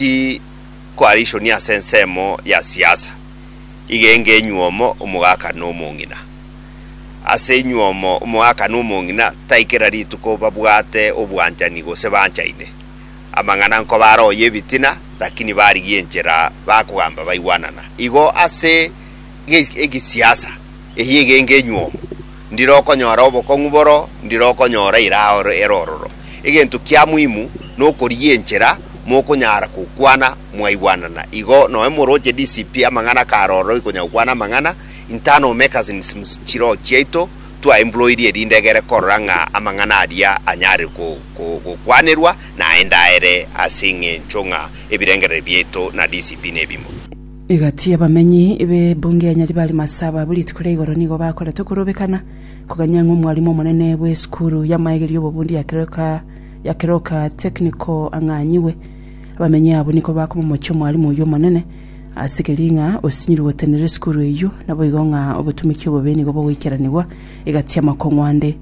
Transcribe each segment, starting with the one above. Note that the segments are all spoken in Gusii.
Ti koarichonia ase ensemo ya siasa, igenge enyuomo omogaka na omong'ina. Ase enyuomo omogaka na omong'ina tai kera rituko babwate obwanchani gose banchaine. Amang'ana nkoba are oye ebitina, lakini barigia enchera bakogamba baigwanana. Igo ase egesiasa, eye egenge enyuomo. Ndire okonyora obokong'u boro ndire okonyora ira aoro ere ororo. Egento kia muhimu nokorigia enchera mokonyara gokwana mwaigwanana. Igo noe moroche DCP amang'ana kare ororo ikonya gokwana amang'ana, internal mechanisms chiroho chiaito twa employed erinde egere korora ng'a amang'ana aria anyare gokwanerwa naende aere ase eng'encho ng'a ebirengereri biaito na DCP nebimo. Egati y'abamenyi b'ebunge ya Nyaribari Masaba abwo rituko ria igoro nigo bakorete okorobekana kogania ng'a omwarimu omonene bw'esukuru y'amaegeri y'obobundi ya Keroka ya Keroka Technical ang'anyigwe. Abamenyi abwo nigo bakomomochia omwarimu oyio omonene ase keria ng'a osinyirwe gotenena esukuru eyio naboigo ng'a obotumiki obobe nigo bogoikeranigwa egati y'amakong'u ande.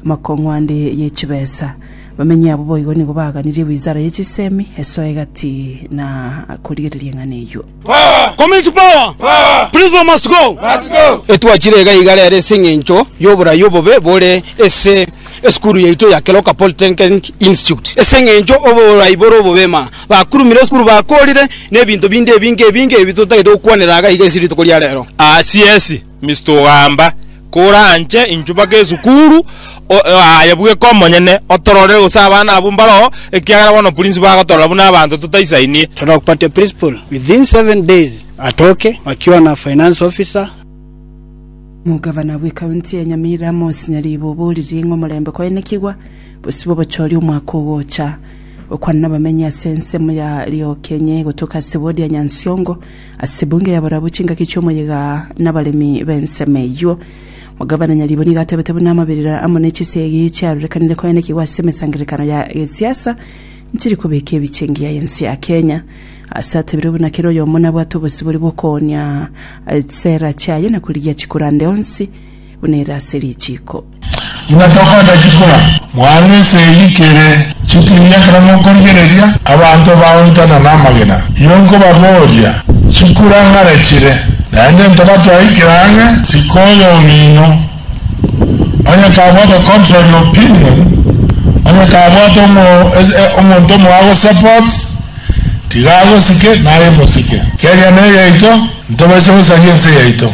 Amakong'wande ye chibesa. Abamenyi abwo boigo nigo baaganirie wizara ye chisemi esoe egati na korigereria eng'ana eyio. Etwachire iga iga rero ase eng'encho y'oborai obobe bore ase esukuru yaito ya Keroka Polytechnic Institute. Ase eng'encho oborai bore obobe ma bakurumire esukuru bakoorire, na ebinto binde ebinge ebinge ebi totagete gokwanera iga iga ase rituko ria rero. Aa CS. Mister ogamba, Kora anche inchu mpaka esukuru, o- o- aye bweka omonyene otororere gose abana abwo mbaroo, ekiagera bono principal agotorora buna abanto totaisainie. Torakupatia principal within seven days atoke akiona finance officer. Omogavana bw'ekaunti ya Nyamirambo Amos Nyaribo oboririe ng'a omorembe koenekigwa bosibwe obochori omwaka ogocha. Gokwana nabamenyi ase ensemo ya Liokenye gotoka ase ward ya Nyansiongo, Ase bunge y'abarabwo chingaki chi'omoyega nabaremi b'ensemo eyio, omogabana nyaribwe nigo atebete buna amaberera amo ne chisegi chiarorekanire koenekigwa ase emesangererekano ya gesiasa nchiri kobeka ebiche engiya y'ense ya Kenya. Ase atebirwe buna kera oyomo nabwate obosibori bw'okoonia chisera chiaye na korigia chikurande onsi buna ere ase richiiko. Buna tokorenda chikura, mwarwe ense eyio ikere chitiini ekero mokorigereria abanto bagoitana namagena. Inwe nkobabooria, chikura ng'are chire? Naende ntoba twaikire ang'e isiko y'omino. Onye kabwate contrary opinion, onye kabwate omonto omoa agosupport, tiga agosike, naye mosike. Kenya neyaito, ntobaisa gosaria ense yaito.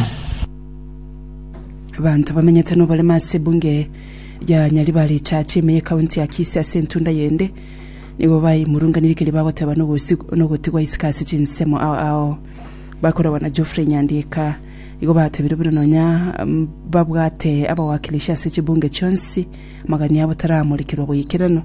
Abanto bamenyete noborema ase ebunge ya Nyaribari Church ime ye county ya Kisii ase entunda yende nigo baimurunganirie keria bagoteba nogosigu nogotigwa isiko ase chinsemo ao ao bakoragwa na Geoffrey Nyandika igo batebire buna nonya mm, babwate abawakilishi ase chibunge chionsi magani abo taramorikerwa goikeranu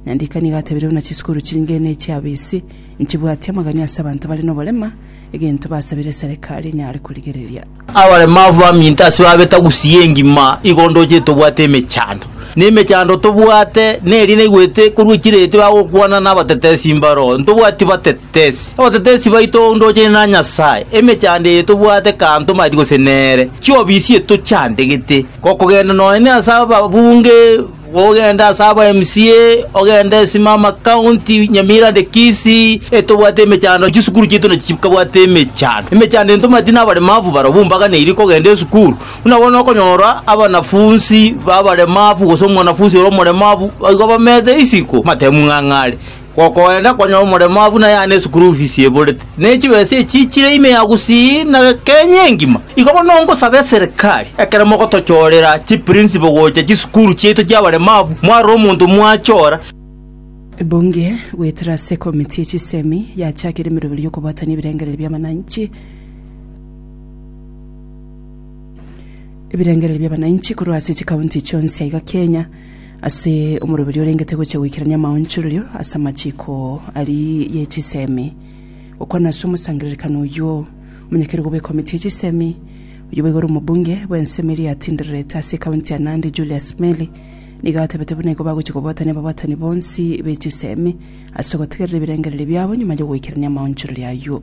Nyandika nigo atebire buna chisukuru chinge ne chiabisi nchibwati amagani ase abanto bare noborema egento basabire Serikali enyare korigereria. Abaremavu baminto ase babeta gusii engima, igo ndoche tobwate emechando. Na emechando tobwate, neri naigwete korwa chiretio bagokwana nabatetesi mbaro, ntobwati batetesi. Abatetesi baito ndoche na Nyasae, emechando eye tobwate kantomati gose nere, chiobisi etochandegete. Gokogenda nonye ase ababunge Gogenda ase aba MCA, ogende simama county Nyamira and Kisii etobwate emechando, chisukuru chiaito nachikabwate emechando. Emechando eye ntomanyeti nabaremafu barobwo mbaganeiri kogenda esukuru. Buna bono okonyora abanafunsi babaremafu gose omwanafunsi ore omoremafu igo bamete isiko matemu ng'ang'are. Gokoenda konya omoremo abwo na yaane esukuru fees eborete, ne chibesa echiichire ime ya gusii na Kenya engima. Igo bono ngosabe eserikari, ekero mogotochorera chiprinciple gocha chisukuru chiaito chi'abaremavu, mwarora omonto mwachora. Ebunge goetera ase ekomiti ye chisemi yachakire emeroberi y'okobwatania ebirengererio bi'amananchi ebirengererio bi'abananchi korwa ase chikaunti chionsi aiga Kenya. ase omoroberio orengete gochia goikerania amaonchorerio ase amachiko aria ye chisemi. Gokwana ase omosangererekano oyio, omonyakeregoba bw'ekomiti ye chisemi, oyio boigo ore omobunge bw'ensemo eria yatindererete ase ekaunti ya Nandi Julius Meli nigo atebete buna igo bagochia kobwatania ababwatani bonsi be chisemi ase ogotegerera ebirengererio biabo nyuma y'ogoikerania amaonchorerio ayio.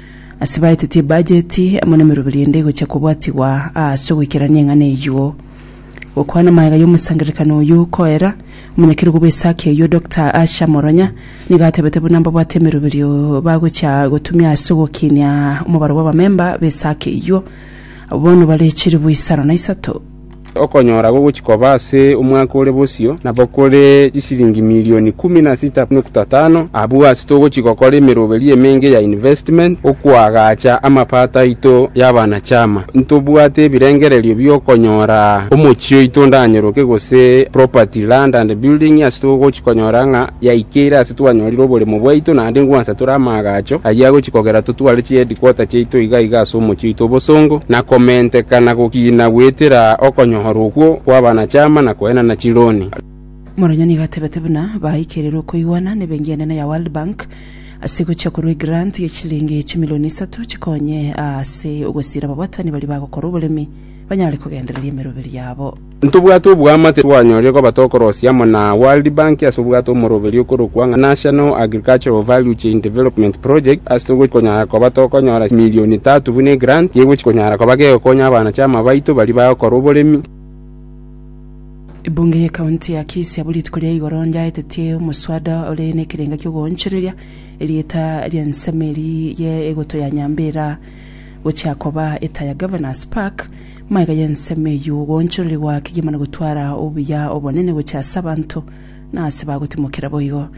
Ase baetetie bajeti amo nemeroberi ende egochia kobwatigwa aase ogoikerania eng'ana eyio. Gokwana magega y'omosangererekani oyio koera, omonyakerugo bw'esake eyio Doctor Asha Moronya nigo atebete buna mbabwate emeroberi bagochia gotumia ase ogokinia omobaro bw'abamemba b'esake eyio, abwo bono bare chilifu isano na isato. Okonyora gogochia koba ase omwaka ore bosio nabo kore chisiringi milioni ikomi na sita nokta tano. Abwo ase togochia gokora emeroberi emenge ya investment okoagacha amapato aito y'abana-chama. Ntobwate ebirengererio bi'okonyora omochie oito ondanyoroke gose property, land and building ase togochia konyora ng'a yaikeire ase twanyorire oboremo bwaito, naende ngwansa tore amaagacho ayio agochia kogera totware chiheadquarter chiaito iga iga ase omochie oito obosongo, na komenteka na gokiina goetera okonyoora okwo kw'abanachama na koenana chironi. Moronyoni iga atebete buna baikeirwe okoigwana nebenki enene ya World Bank ase gochia korwa egrant ye chiliingi chimilioni isato chikonye ase ogosiira ababwatani baria bagokora oboremi banyare kogendereria emeroberio yabo. Ntobwate oboamate twanyorire koba tokorosia amo na World Bank ase obwato omoroberio okorokwa ng'a National Agricultural Value Chain Development Project ase togochia konyara koba tokonyora chimilioni tatu buna egrant gegochia konyara koba gegokonya abana-chama baito baria bagokora oboremi. Ebunge ye county ya Kisii abwo rituko ria igoro yaetetie omoswada ore nekerenga kiogoonchoreria erieta ria ensemo eria ye egoto ya Nyambera gochia koba eta ya Governors Park, Magega y'ensemo eyio goonchorori goa kegima na gotwara obuya obonene gochia ase abanto na ase bagotimokera boigo.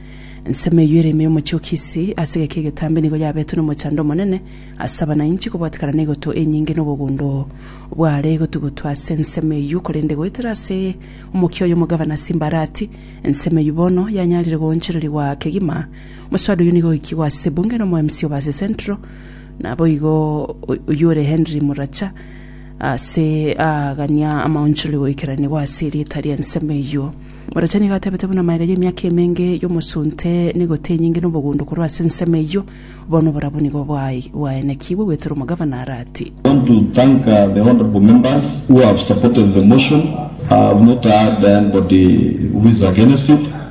Ensemo eyio ere ime y'omochie o Kisi ase egeka egetambe nigo yabetwe nomochando omonene ase abanainchi kobwatekana neigoto enyinge na obogondo bware gotugutwa ase ensemo eyio korende goetera ase omokia oyo omogavana Simbarati ensemo eyio bono yanyarire goonchorori goa kegima. Omoswada oyio nigo oikigwe ase ebunge na omoemsi o Base Central Naboigo oyore Henry Muracha ase aagania amaonchori goikeranigwa ase erieta ri'ensemo eyio. Muracha nigo atebete buna maega y'emiaka emenge y'omosunte nigote enyinge nobogundo korwa ase ensemo eyio, bono oborabu nigo bwaenekigwe gwetera omogavana Arati. I want to thank uh, the honorable members who have supported the motion. I have not heard anybody who is against it.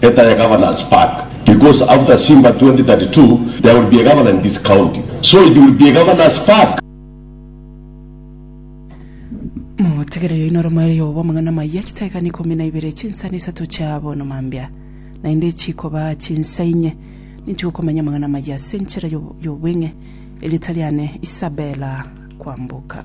Better ya governors back because after Simba 2032 there will be a governor in this county so it will be a governors back. Motegereri oino oromoerio obo bw'amang'ana amayia, chitaegani ikomi na ibere chinsa na isato chia bono mambia, naende chikoba chinsa inye, ninchigokomanya amang'ana amayia ase enchera y'obweng'e, erieta riane Isabella Kwamboka.